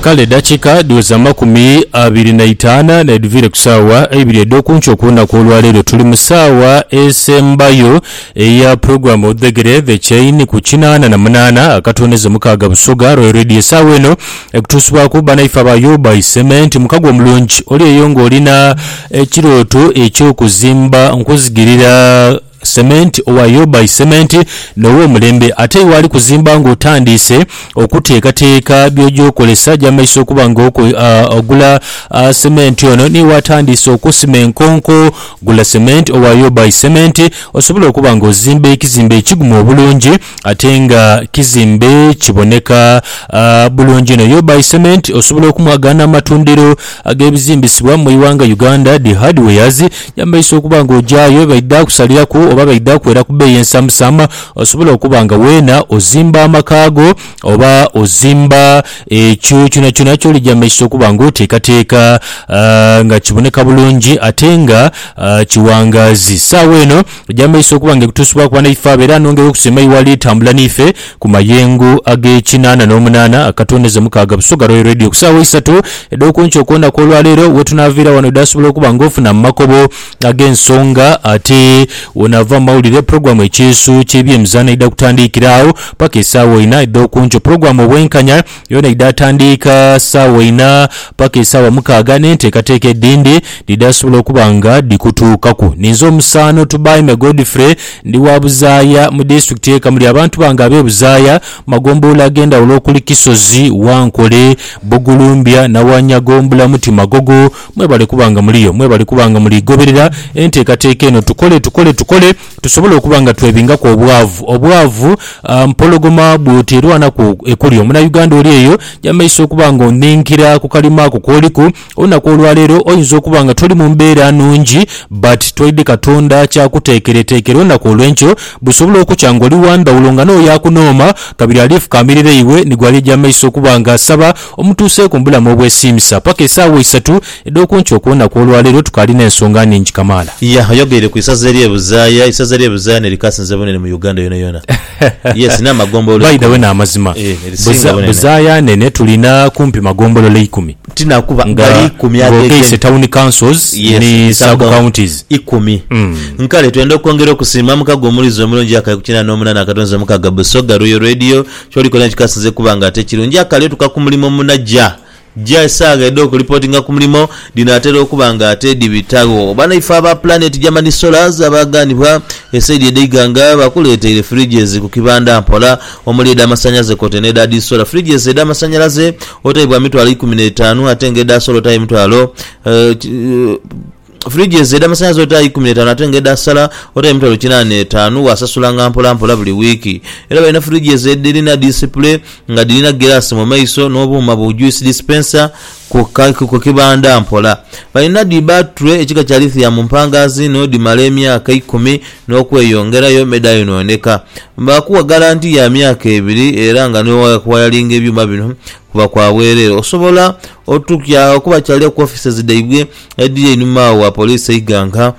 Kale edakika dhiweza amakumi abiri na itaana nedhiviire ku saawa eibiri edhokunkyo ku lunaku olwaleero. Tuli mu saawa esembayo eya pulogulamu Odhegere The Chain ku kinaana na munaana akatonezo mukaaga Busoga Royal Radio. Esaawa eno ekutuusibwaku banaife aba Yoba Isementi. Mukago omulungi oli eyo nga olina ekirooto ekyokuzimba nkuzigirira. Sementi, owa Yoba Isementi n'ow'omulembe. Ate iwe ali kuzimba ng'otandiise okuteekateeka by'oja okozesa, ja mu maiso okuba ng'ogula sementi ono. N'iwe atandiise okusima enkonko, gula sementi, owa Yoba Isementi, osobole okuba ng'ozimba ekizimbe ekigumu obulungi ate nga kizimbe kiboneka bulungi inho. Yoba Isementi osobola okumwagaana mu matundiro ag'ebizimbisibwa mu ighanga Uganda, Dee Hardwares. Yambaisa okuba nga ogyayo bye baidha kusaliraku oba baidha kwera ku bbeeyi ensamusamu osobole okuba nga weena ozimba amaka go oba ozimba ekyo kyonakyona ky'oli gy'ambaisa okuba nga oteekateeka nga kiboneka bulungi ate nga kiwangaazi. Saagho eno. Gy'amaiso okuba nga ekutuusibwaku banaife abo era anongere okusima iwe ali tambula n'ife ku mayengo ag'ekinaana n'omunaana akatondeza mukaaga Busoga Royal Radio ku saawa isatu edh'oku nkyo kwona kw'olwa leero wetunaaviira wano edhaasobola okuba nga ofuna mu makobo ag'ensonga ate wonaava mu mawulire pulogulaamu Ekyeeso ky'ebyemizaano eidha kutandiikira agho paka esaawa ina edh'oku nkyo pulogulaamu Obwenkanya Yoona eidha atandiika saawa inha paka esaawa mukaaga n'enteekateeka edhindi dhidha sobola okuba nga dhikutuukaku. Ninze omusaano Tubaime Godfrey, ndi wa Buzaaya mu disitulikiti y'e Kamuli. Abantu bange ab'e Buzaaya mu magombolola ag'endhawulo okuli Kisozi, Wankole, Bugulumbya, Nawanyago, Mbulamuti, Magogo mwebale kuba nga muliyo. Mwebale kuba nga muli goberera enteekateeka eno Tukole, Tukole, Tukole. tusobola okuba nga twebingaku obwavu. Obwavu mpologoma bwoti erwanaku ekulya. Omunauganda oli eyo yamaiso okuba nga onhinkira ku kalima ako kooliku, olunaku olwaleero oyinza okuba nga toli mu mbeera nnungi but tweidhi Katonda kyakuteekereteekera olunaku olwenkyo busobola okukya ng'oli wa ndhawulo nga n'oyo akunooma kabiri alifukaamirira iwe ni gw'alija amaiso okuba nga asaba Omutuuseeku mu bulamu obwesiimisa paka esaawa isatu edh'okunkyo okw'olunaku olwaleero tukaali n'ensonga nhingi kamaala. Yah ayogeire ku isaza erye Buzaaya, isaza erye Buzaaya nerikasinze bunene mu Uganda yonayona. Yes n'amagombolola By the way eikumi. n'amazima. Eeh nerisiinga Buza, bunene. Buzaaya nene tulina kumpi magombolola ikumi. Tinakuba Nga gali ikumi ng'ogeise agegenhe. town councils Yes ni ni sub sub-county counties. ikumi. Kale twenda okwongera okusiima mukago omulizi omulungi akaikumi na munaana akatonzi omukaaga Busoga Royal Radio Ky'oli koona kikasinze kuba nga ate kirungi. Akali otuka ku mulimo munajja jja esaagha edh'okulipotinga ku mulimo dhinaatera okuba nga ate dhibitagho. Banaife aba Planet Germany Solars abaaghanibwa esaidi edh'eighanga bakuleeteire fridges ku kibanda mpola omuli edh'amasanyaze kwotaire n'edha dhi sola. Fridges edh'amasanyalaze otaibwa mitwalo ikumi n'etaanu ate nga edha sola otayo emitwalo. Fridge ezo edha masanhalaze ota aye ikumi n'etaanu ate nga edha sala ota aye mitwalo kinaana n'etaanu waasasulanga mpola mpola buli wiiki. Era balina fridge ezo edhirina disipule nga dhirina giraasi mu maiso n'obuuma bu juice dispenser ku kibanda mpola. Balina dhi battery ekika kya lithium mpangaazi inho dhimala emyaka ikumi n'okweyongerayo me dhaayonooneka. Baakuwa ggalanti ya myaka ebiri era nga ni wayalinga ebyuma bino kuba kwa bwereere. Osobola. Otuukya okubakyalira ku offices dhaibwe edhiri einhuma agho wa police e Iganga.